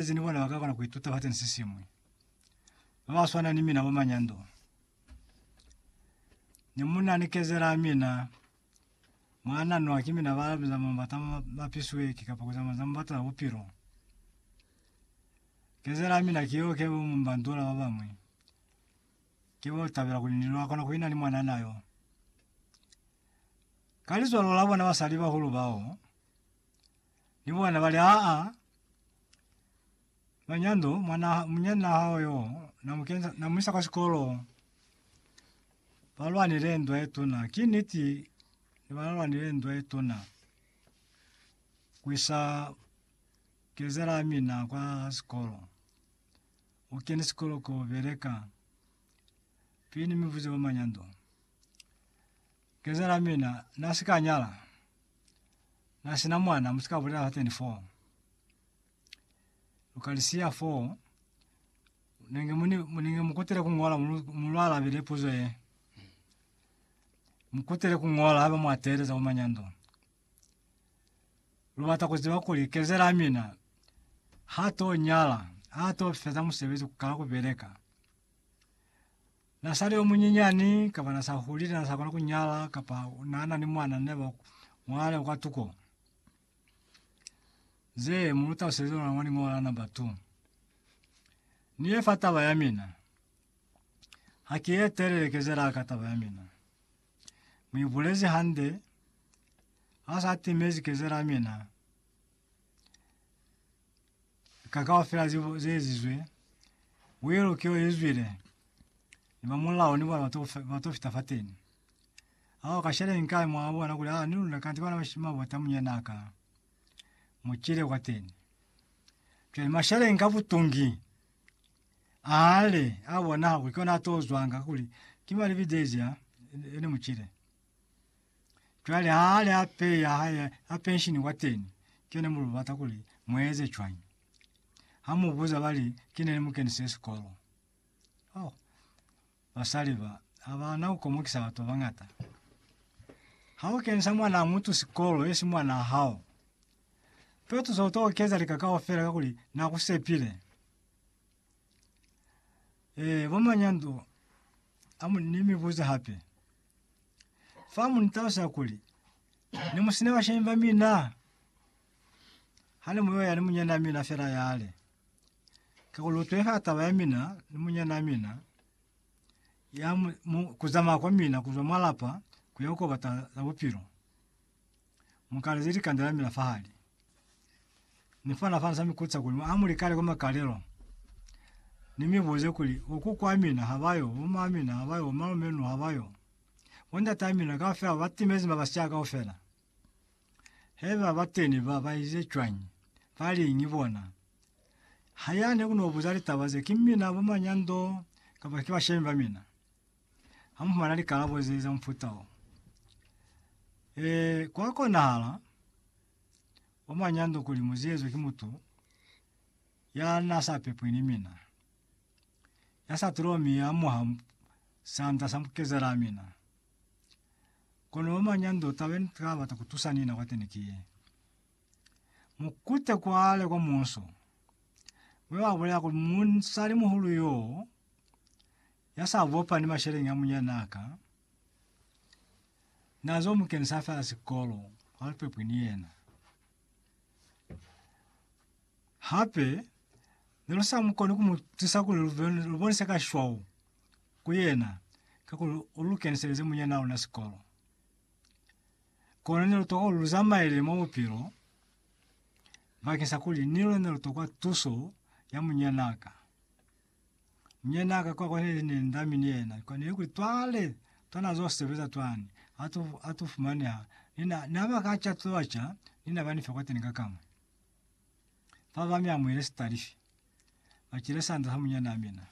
Baezezi ni bona ba ka kona ku ituta fa tenisi siñwi. Ba ba swana ni mina mwa manyando. Ni munna ni kezela mina, mwa nanwa ki mina ba biza mwa mabata ma mapisweki kapa ku zamaiza mabata a bupilo. Kezela mina ki yo ke bo mu mbandula ba bañwi. Ke bo tabela kuli ni lwa kona ku ina ni mwanana yo. Ka lizwalo la bona basali bahulu bao, Ni bona bali, Aa, Manyando, mwana, munyana hao yo, namukenza, namuisa kwa sikolo. Balwanile ndwa ye tuna. Ki niti, ni balwanile ndwa ye tuna. Kuisa kezela mina kwa sikolo. O kene sikolo ko beleka. Pini mivuze ba Manyando. Kezela mina, na sikanyala. Na sina mwana musika bulela ha 24. Lukalisia 4 nenge muni muninge mukutile kungola mulwala bile puzo ye. Mukutile kungola haba mwatele za umanyando. Lubata kuziba kuli kezela mina ha to nyala ha to feza musebezi ka kubeleka. Na sali yo munyinyani, kapa na sa hulile, na sa kona ku nyala, kapa na na ni mwana, ne ba ngwale kwa tuko. Ze mu lu taluselize lona mwa lingola la number 2. Ni ye fa taba ya mina. Ha ki ye telele kezela ka taba ya mina. Mu ibulezi hande, ha sa timezi kezela mina. ka kaufela ze ze ezizwe, uye lukeo ye zwile, ni ba mulao ni bona ba to ba to fita fateni. Ao ka shale ni kale mwa bona kuli aa ni luna kanti bana ba shima bota munyana ka mu chile kwateni. Cwale mashale nka butungi ale a bona kuli kona to zwanga kuli ki mali bidezi a ene muchile. Cwale ha ale a pe ya hae a penshini kwateni, ke ne mu lu bata kuli mu eze cwañi? Ha mu buza ba li, Ki ne ni mu kenise sikolo. Oh, basali ba, ha ba na ku komokisa batu ba bañata. Ha u kenisa mwanaa mutu sikolo, yesi mwanaa hao. Fe tusa u tokeza lika kaufela kakuli na ku sepile. Ee, bo manyandu a mu, ni mi buze hape. Fa mu ni talusa kuli, Ne mu sina bashemi ba mina, ha ne mu yo ya ni munyanaa mina fela yale. Kakuli u tweha taba ya mina ni munyanaa mina, ya mu, mu, ku zamaya kwa mina ku zwa mwa lapa ku ya ku kobata za bupilo. Mukalezi likanda lamila fahali ni fana fana sa mikutsa kuli a mu likale kwa makalelo ni mi buze kuli uku kwa mina ha bayo uma mina ha bayo uma menu ha bayo bo ndata mina kaufela ba timezi ma basya kaufela he ba ba teni ba ba ize cwani ba li ngi bona ha ya ne kuno buza litaba ze ki mina bo manyando kapa ki bashemi ba mina. Ha mu fumana likalabo ze za mufuta o, e, kwa konahala kwa mwanyando kuli mu ziezwe ki mutu ya na sa pepwi ni mina, ya sa tulwa mi ya amuha sanda sa mukezela mina. Kono mwa mwanyando, taba ye ni ka bata ku tusa ni na kwateni ki ye, Mu kute kwale kwa munso, mwe ba bulela kuli musalimuhulu yo, Ya sa bopa ni masheleñi a munyanaa ka n'a zo mu kenisa fela sikolo, ha lu pepwi ni yena. Hape ne lu sa mu koni ku mu tusa kuli lu, be, lu bonise ka shwau ku yena kakuli u lu keniselize munyanaa luna sikolo. Kono ne lu tokwa kuli lu zamaele mwa bupilo bakeng sa kuli ni luna ne lu tokwa tuso ya munyanaa ka. Mnyena ka kwa kone ni ne ndami ni yena kwa nili kuli twale twa na zo sebeza twani atu atu fumaneha ni na ni aba ka cha tloa cha ni na ba ni fe kwa teni ka kamwe. Fa ba mi amuhile sitalifi. Ba kile sanda sa munyana mina.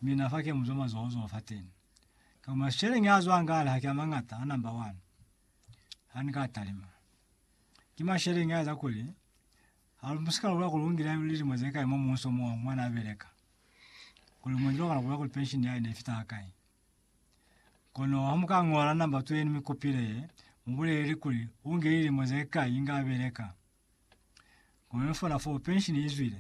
Mina fa ke muzwa mazoho zoho fa teni. Ka kuma sheleng a zwa ngale ha ke a mangata a number one. Ha ni ka talima. Ki masheleng a eza kuli Ha lu si ka lula kuli u ngile lilimo ze kai mwa muhuso mo mwa n'a beleka, kuli mu ngile wa kona ku lula kuli pensheni ya hae ne i fita hakai. Kono ha mu ka ñola namba tso ye ni mi kupile ye, mu buleleli kuli u ngile lilimo ze kai inge a beleka. Kono ni fona foo pensheni i zwile.